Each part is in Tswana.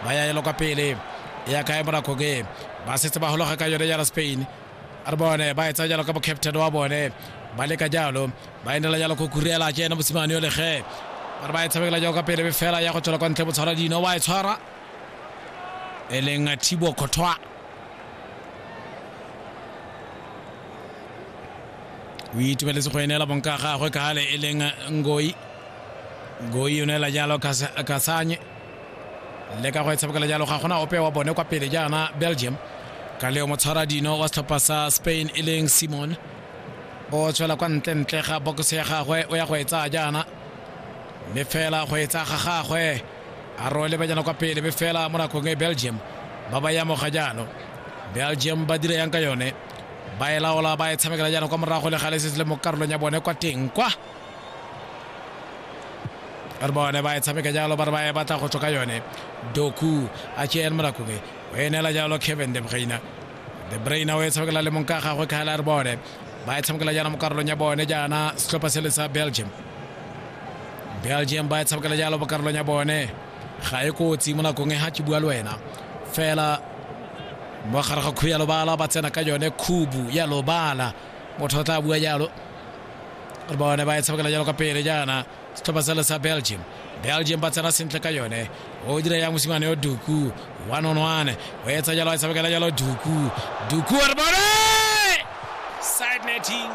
ba ya elo kwa pele ya kae bonako ke ba setse ba gologa ka yone jala spain a re bone ba etsa jalo ka bocaptain wa bone ba leka jalo ba enela jalo go kurela ke ena mosimane yo lege ba re ba e tshamekela jalo ka pele fela ya go tswela kwa ntle botshwara dino wa e tshwara e leng thibo khotwa o itumeletse go enela bonka gagwe ka gale e leng ngoi ngoi o neela jalo kasanye le ka go e tshamekela jalo ga gona ope wa bone kwa pele jaana belgium ka leo motshwara dino wa setlhopha sa spain e leng simon o tswela kwa ntlentle ga bokose ya gagwe o ya go e tsaya jaana mme fela go e tsaya ga gagwe a role ba jana kwa pele mme fela mo nakong e belgium ba ba yamoga jalo belgium ba dira yang ka yone ba e laola ba e tshamekela jaana kwa morago le ga le setse le mo karolong ya bone kwa teng kwa re bone ba e tshameka jalo ba re ba e batla go tswa ka yone doku a tšean morakube o e neela jalo kevin de braina de braina o e tshamekela le mong ka gagwe kgale a re bone ba e tshamekela jaana mo karolong ya bone jaana setlhopha se le sa belgium belgium ba e tshamekela jalo mo karolong ya bone ga e kotsi mo nakong e ga ke bua le wena fela mo gare ga khubu ya lobala ba tsena ka yone khubu ya lobala motho o tla bua jalo re bone ba e tshamekela jalo ka pele jaana setlhopha sele sa belgium belgium ba tsena sentle ka yone o dira yang mosimane yo duku one on one o etsa jalo a tshamekela jalo duku duku re bone side netting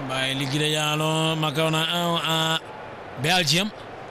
ba e lekile jalo makaona ao a belgium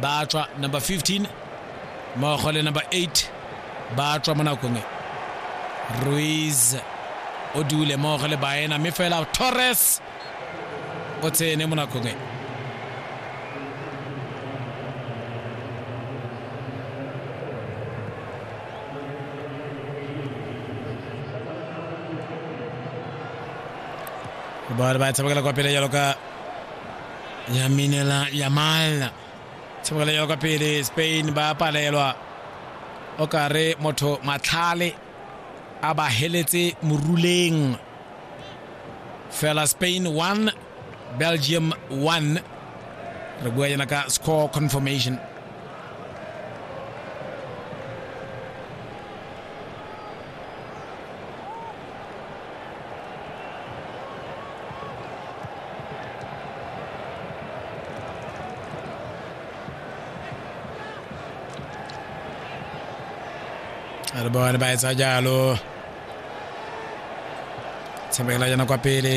ba tswa number 15 mmogo le number 8 ba tswa mo nakong e ruiz o dule mmogo le baena mme fela torres o tsene mo nakong e ba ba tshamekela kwa pele jalo ka yaminela yamal tshemola ya kwa pele spain ba palelwa o kare motho matlhale a ba heletse moruleng fela spain 1 belgium 1 re bua yana ka score confirmation Re bone ba etsa jalo tshamekela jana kwa pele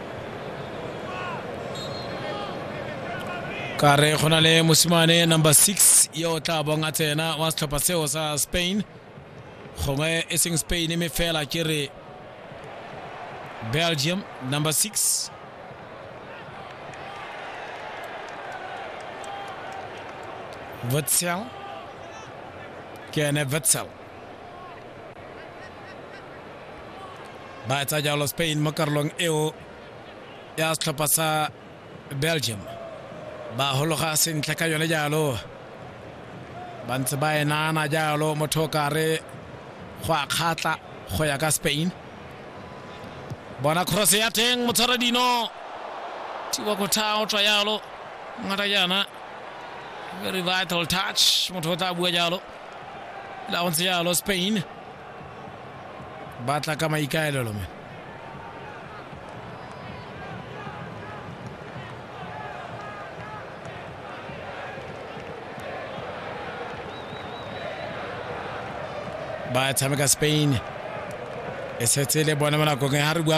ka re go na le mosimane number six yo o tla bong a tsena wa setlhopha seo sa spain gongwe e seng spain mme fela ke re belgium number six witzel ke ene witzel ba etsa jalo spain mo karolong eo ya setlhopha sa belgium ba hologa sentle ka yone jalo ba ntse ba enana jalo motho o kare go a kgatla go ya ka spain bona cross ya teng motshwara dino thiba go tha o tswa jalo ngata jana very vital touch motho o tla bua jalo la go ntse jalo spain ba tla ka maikaelelo me ba tshameka spain e setse le bone mo nakong e ga re bua